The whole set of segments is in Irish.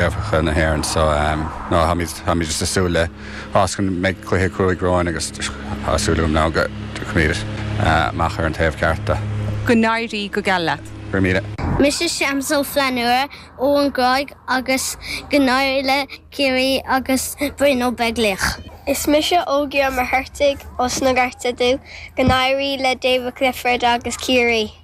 Eorpacha na hÉireann so táimid ag súil le bás, chun go mbeidh cluiche cruaidh romhainn agus tá súil agam ná go dtiocfaimid amach ar an taobh ceart de. Go n-éirí go geal leat. Go raibh míle. Mise Séamus Ó Flannúra ó an Ghráig agus go n-éirí le Ciarraí agus Brian Ó Beaglaoich. Is mise Ógie Ó Muircheartaigh ós na Gorta Dubha, go n-éirí le Davy Clifford agus Ciarraí.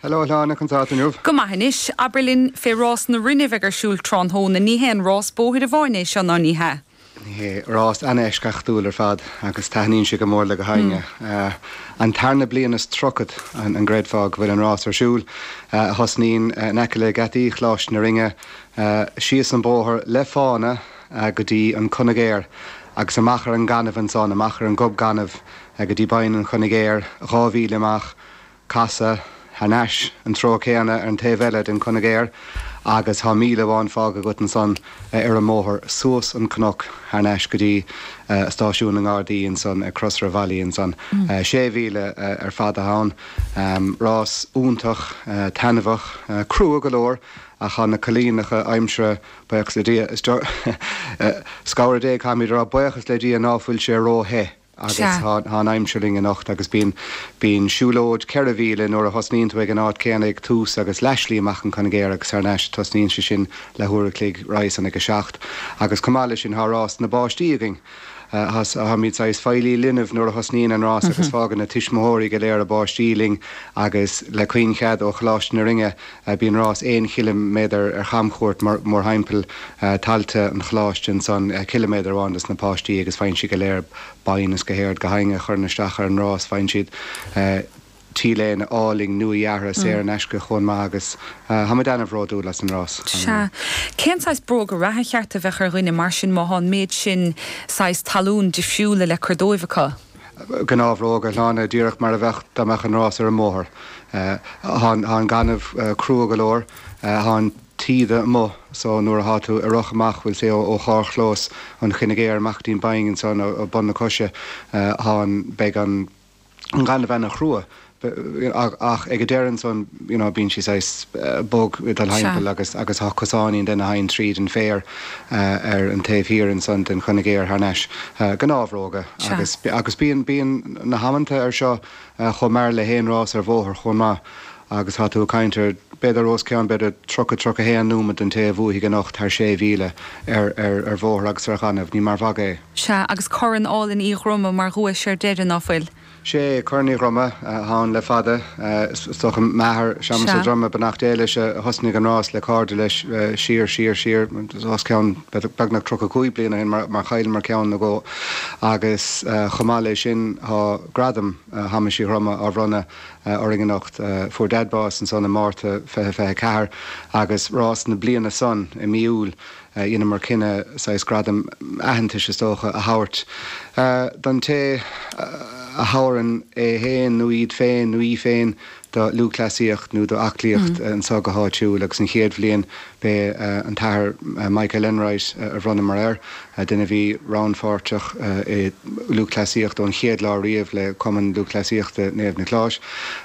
Hello a Shláine, conas tánn tú inniu? Go maith anois, abair linn fé rás na Rinne a bheidh ar siúl tráthnóna. Ní haon rás bóthair amháin é seo, ná ní hea? Ní hea, rás ana-eisceachtúil ar fad agus taitníonn sé go mór le gach éinne. An tarna bliain is tríochad, an gcreidfeá, go bhfuil an rás ar siúl, a thosnaíonn in aice le geataí Choláiste na Rinne, síos an bóthar le fána go dtí an Coinigéar agus amach ar an ngaineamh ansan, amach ar an gob gainimh go dtí Binn an Choinigéir, dhá mhíle amach. casadh thar n-ais sa treo céanna ar an taobh eile den Coinigéar agus thá míle amháin fágtha agat ansan ar an mbóthar suas an cnoc thar n-ais go dtí stáisiún na nGardaí ansan ag Crosaire Bhealaí ansan. Sé mhíle ar fad athá ann. Rás iontach, taitneamhach, crua go leor ach thá na coinníollacha aimsire buíochas le Dia, is dócha, le cabhair Dé caithfimid a rá buíochas le Dia ná fuil sé ró-the. Sea. Agus thá an aimsir linn anocht agus bíonn bíonn siúlóid ceithre mhíle nuair a thosnaíonn tú ag an áit céanna ag tús agus leathslí amach an Coinigéar agus thar n-ais. Tosnaíonn sé sin le huair a chloig, roimhe san ag a seacht. Agus chomh maith leis sin thá rás na bpáistí againn. Tháimid saghas feighlí leanbh nuair a thosnaíonn an rás agus fágann na tuismitheoirí go léir a bpáistí linn agus le caoin-chead ó Choláiste na Rinne, Bíonn rás aon chiliméadar ar chamchuairt mórthimpeall thailte an Choláiste, ansan ciliméadar amháin dos na páistí agus faigheann siad go léir boinn is gach éinne, gach éinne a chuireann isteach ar an rás. Faigheann siad t-léine álainn nua-dheartha saor in aisce chomh maith agus tháimid ana-bhródúil as an rás. Sea. Cén saghas bróga reatha ba cheart a bheadh ar dhuine mar sin má tá an méid sin saghas talún difriúla le cur dóibh acu? Gnáthbhróga, a Shláine, díreach mar a bheadh dá mbeadh an rás ar an mbóthar. Thá an gaineamh crua go leor, thá an taoide amuigh so nuair athá tú ag rith amach bhfuil sé ó charr-chlós an Choinigéir amach dtí an Bhinn ansan ó bun na coise thá an, beidh an an gaineamh ana-chrua ach ag an deireadh ansan you know bíonn sé saghas bog ag dul timpeall agus agus tá cosáinín den thainn tríd an féar ar an taobh thiar ansan den choinigéar thar n-ais. gnáthbhróga agus agus bíonn bíonn na hamanta ar seo chomh mear le haon rás ar bhóthar chomh maith agus thá tú ag caint ar b'fhéidir os cionn b'fhéidir 30, 31 nóimead den té a bhuafaidh anocht thar sé mhíle ar ar ar bhóthar agus ar ghaineamh. Ní mar mhagadh é. Sea, agus Corn Álainn Uí Dhroma mar dhuais ar deireadh, ná fuil? 'Sé Corn Uí Dhroma atá ann le fada. Is dócha m'athair, Séamas Ó Droma, Beannacht Dé leis, a thosnaigh an rás le cairde leis siar, siar, siar os cionn beagnach 35 bliain ó shin mar chailleamar ceann nó dhó agus chomh maith leis sin tá gradam Shéamais Uí Dhroma á bhronnadh orainn anocht. Fuair Dad bás ansan i Márta fiche fiche ceathair agus rás na bliana san i mí Iúil. dhéanamar cinneadh saghas gradam aitheantais, is dócha, a thabhairt don té a thabharann é féin nó iad féin nó í féin do lúthchleasaíocht nó d'aclaíocht anseo go háitiúil agus an chéad bhliain b'é an tAthair Michael Enright a bhronnamar air, duine a bhí rannpháirteach i lúthchleasaíocht ón chéad lá riamh le Cumann Lúthchleasaíochta Naomh Niocláis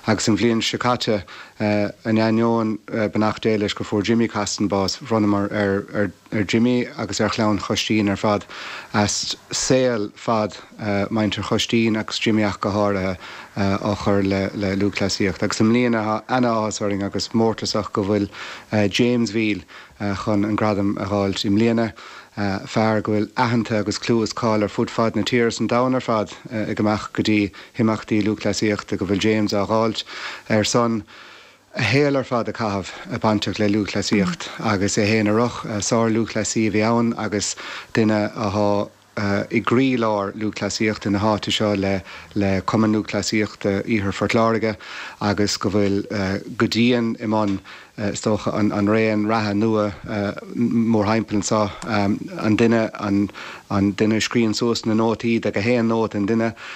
agus an bhliain seo caite In ainneoin beannacht Dé leis gur fuair Jimmy Costin bás, bhronnamar ar Jimmy agus ar chlann Choistín ar fad as saol fad mhuintir Choistín agus Jimmy ach go háirithe, á chur le lúthchleasaíocht. Agus i mbliana tá ana-áthas orainn agus mórtasach go bhfuil James Veale, chun an gradam a dh'fháilt i mbliana, fear go bhfuil aitheanta agus clú is cáil ar fud fad na tíre is an domhain ar fad ag amach go dtí himeachtaí lúthchleasaíochta go bhfuil James á dh'fháilt ar son a shaol ar fad a chaitheamh a bainteach le lúthchleasaíocht agus é fhéin ag rith. Sárlúthchleasaí a bhí ann agus duine a i gcroílár lúthchleasaíochta na háite seo le le Cumann Lúthchleasaíochta Iarthar Phort Láirge agus go bhfuil go dian i mbun is dócha, an raon reatha nua mórthimpeall anseo, an duine an duine a scríonn suas na nótaí de gach aon nóta an duine,